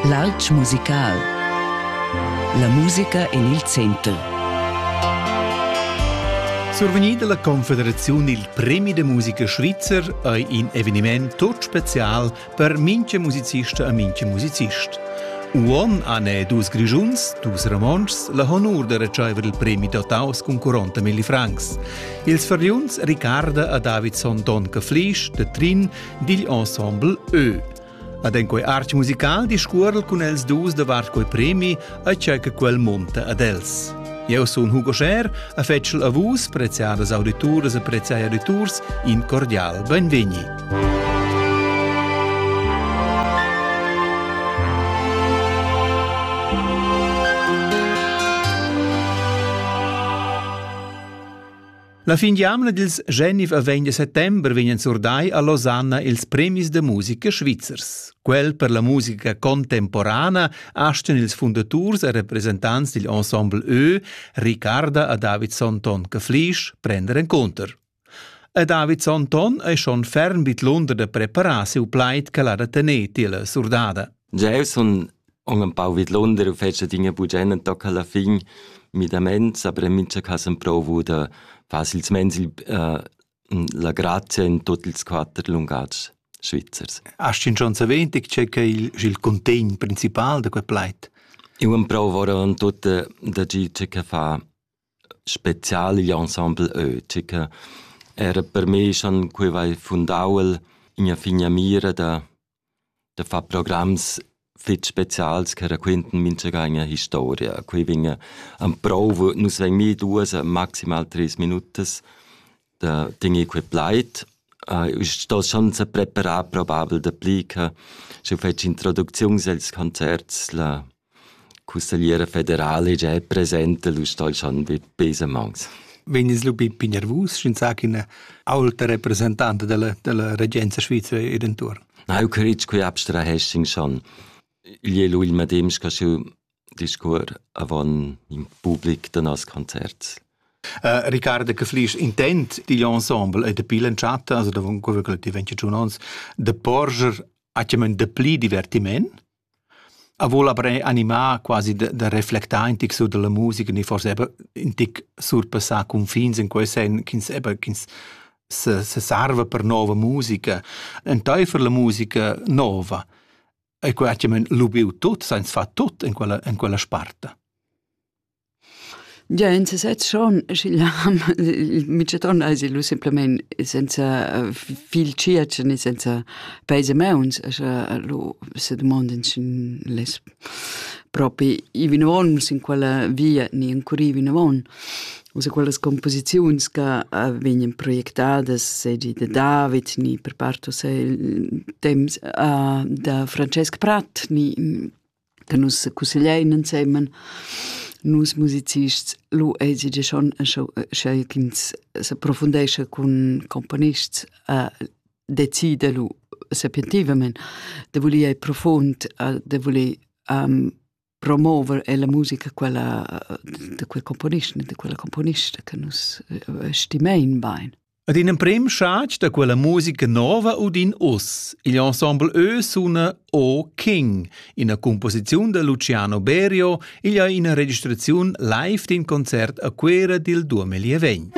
L'alp musical. La musica en il center. Survegnida la Confederaziun il Premi de musica svizzer ei in eveniment tut special per minche musicista e minche musicist. Uon han e dus Grischuns, dus Romontschs, la honur de ricevere il premi dotaus con 40 mille francs. Ils fariuns Riccarda e Davidson Don Caflisch de Trin digl ensemble Ö. Ad en quei artg musical discuorel cun els dus davart quei premi a tgei che quel monta ad els. Eu sun Hugo Scher, a fetschel a vus, preziadas audituras e preziai auditurs, in cordial benvegni. La fin d'jamna dils Genf a 20 settember vegnan surdai a Losanna ils premis da musica svizzers. Quel per la musica contemporana astan ils fundaturs e representants dil ensemble Ö, Ricarda a David Sonton Caflisch, prender encounter. A David Sonton ei schon ferm vid Lunder da preparar siu plaid che l'ha da tener tier la surdada. Jeu sun Hon empau vidlunder u fetscha adina bugen entochen la fin midaments, aber en mincha cas emprouvu da far silsemens il, uh, la grazia in tut ils quatter lungatgs svizzers. Hast du schon erwähnt, c'è che il, il contegn principal da quel plaid? Io emprouvo ora en tut da gi c'è che fa spezial igl ensemble Ö, c'è che era per me schon quei vai fundau in a figna mira da da far programs fitg specials che raquintan mintgaga historia. Quei vegn emprouvo, nus vegn mi duas, maximal treis minutas da tener quei plaid. Uh, sto schon se preparar probabel dapli che sche fetsch introducziuns els concerts la Cussegliera federala già è presenta l'us dal Chan Besamags. Vegnis lu bin nervus, sch'ins sa ch'ina aulta representanta della, della regenza svizra ir intorn? Neu critg qui abstrahessin schon. Igl è l'ul medem che schiu discur avon in public da nos concert. Uh, Riccardo Caflisch intent digl ensemble e de pilen chat, also da quello che ti venci tun ons, de porger a chiamen de pli divertiment A voul abrer animà quasi da da reflectar in tic sur da la musica ni forsa eir ün tic surpassà cunfins in quel sen ch'ins eber ch'ins se se sarva per nouva musica. Entaifer la musica nouva e quai chi'm han lubieu tut, s'ha ins fat tut in quella in quella sparta. Gia in sesez schon, sch'igl ham, il mitschaton ais illu simplamaing senza fil tschiatsch ne senza peis e mauns, scha allu se dumondin sch'ün less propi i vinavon sin quella via ni encurrir vinavon. U se quellas composiziuns ca vegnan projectadas seigi da David ni per part uschè il temps da Francesc Pratt ni da nus cussegliain ensemen nus musicists lu eisi gia schon sch'ei ch'ins s'approfundescha cun componists decida lu sapientivamein da voler ir profund da voler promover ella musica quella da quei componist da quella componista che nus stimein bein. Ad in emprim schatg da quella musica nova udin uss. Il ensemble Ö suna O King, ina composiziun da Luciano Berio, igl ha ina registraziun live d'in concert a Cuera dil 2020.